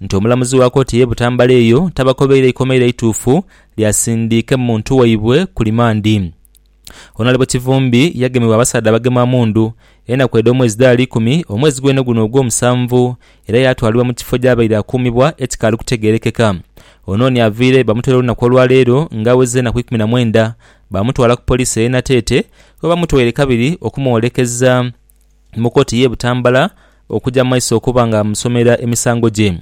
nti omulamuzi wa kooti y'e Butambala eyo tabakobeire ikomairo eituufu lya sindiike muntu waibwe ku limandi. Onalebo Kivumbi yagemebwa abasaadha abagema mundu enaku edh'omwezi dhaali ikumi omwezi gwene guno ogwomusanvu era yaatwalibwa mu kifo gy'abaire akuumibwa ekikaali kutegeerekeka. Onooni aviire bamutwere olunaku olwaleero nga awezezza enaku ikumi na mwenda baamutwala ku poliisi ey'e Nateete webamutwaire kabiri okumwolekeza mu kooti y'e Butambala Okuja mu maiso okuba nga amusomera emisango gye,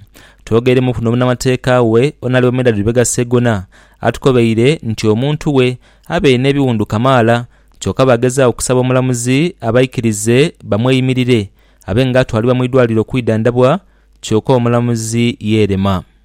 twogeremuku n'omunamateeka we Onalebo Medard Lubega Segona atukobeire nti omuntu we abaire n'ebiwundu kamaala kyoka baagezaagho okusaba omulamuzi abaikirize bamweyimirire abe nga atwalibwa mu idwaliro okwidhandabwa kyoka omulamuzi yeerema.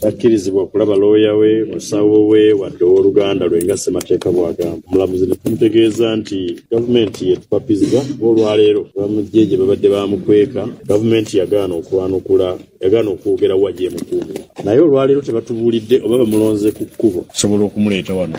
Takkirizibwa kulaba looya we, musawo we wadde ow'oluganda lwe nga Ssemateeka bw'agamba. Omulamuzi ne tumutegeeza nti, Gavumenti yetupapizza kuba olwaleero abamagye gye babadde baamukweka, Gavumenti yagaana okwanukula, yagaana okwogera wa gyemukuumira. Naye olwaleero tebatubuulidde oba bamulonze ku kkubo okusobola okumuleeta wano.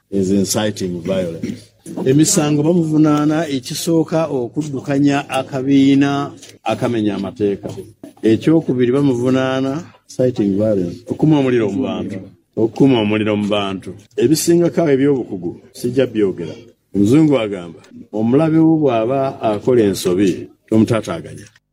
is inciting violence emisango bamuvunaana ekisooka okuddukanya akabiina akamenya amateeka, ekyokubiri bamuvunaana inciting violence okukuma omuliro mu bantu okukuma omuliro mu bantu ebisingako agho eby'obukugu sijja byogera omuzungu agamba omulabe wo bwaba akola ensobi tomutaataaganya.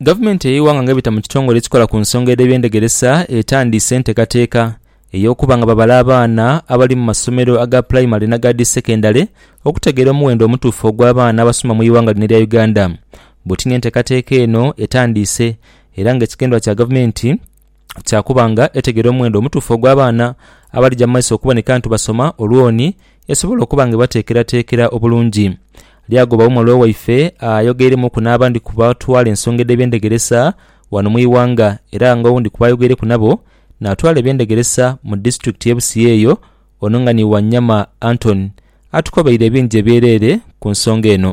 Gavumenti ey'eighanga nga ebita mu kitongole ekikola ku nsonga edh'ebyendhegeresa etandiise enteekateeka ey'okuba nga babala abaana abali mu masomero aga pulayimale n'aga dhi sekendale okutegeera omughendo omutuufu ogw'abaana abasoma mu ighanga lino erya Uganda. Bwotini enteekateeka eno etandiise era nga ekigendererwa kya gavumenti kya kuba nga etegera omuwendo omutuufu ogw'abaana abalija mu maiso okuboneka nti basoma olwoni esobole okuba nga ebateekerateekera obulungi. Lyagoba umwalwa waife ayogeiremuuku n'abandi ku batwala ensonga edh'eby'endegeresa ghano mu ighanga era nga owundi ku baayogeireku nabo naatwala eby'endegeresa mu disitulikiti y'e Busia eyo ono nga ni Wanyama Anton atukobeire ebingi ebyereere ku nsonga eno.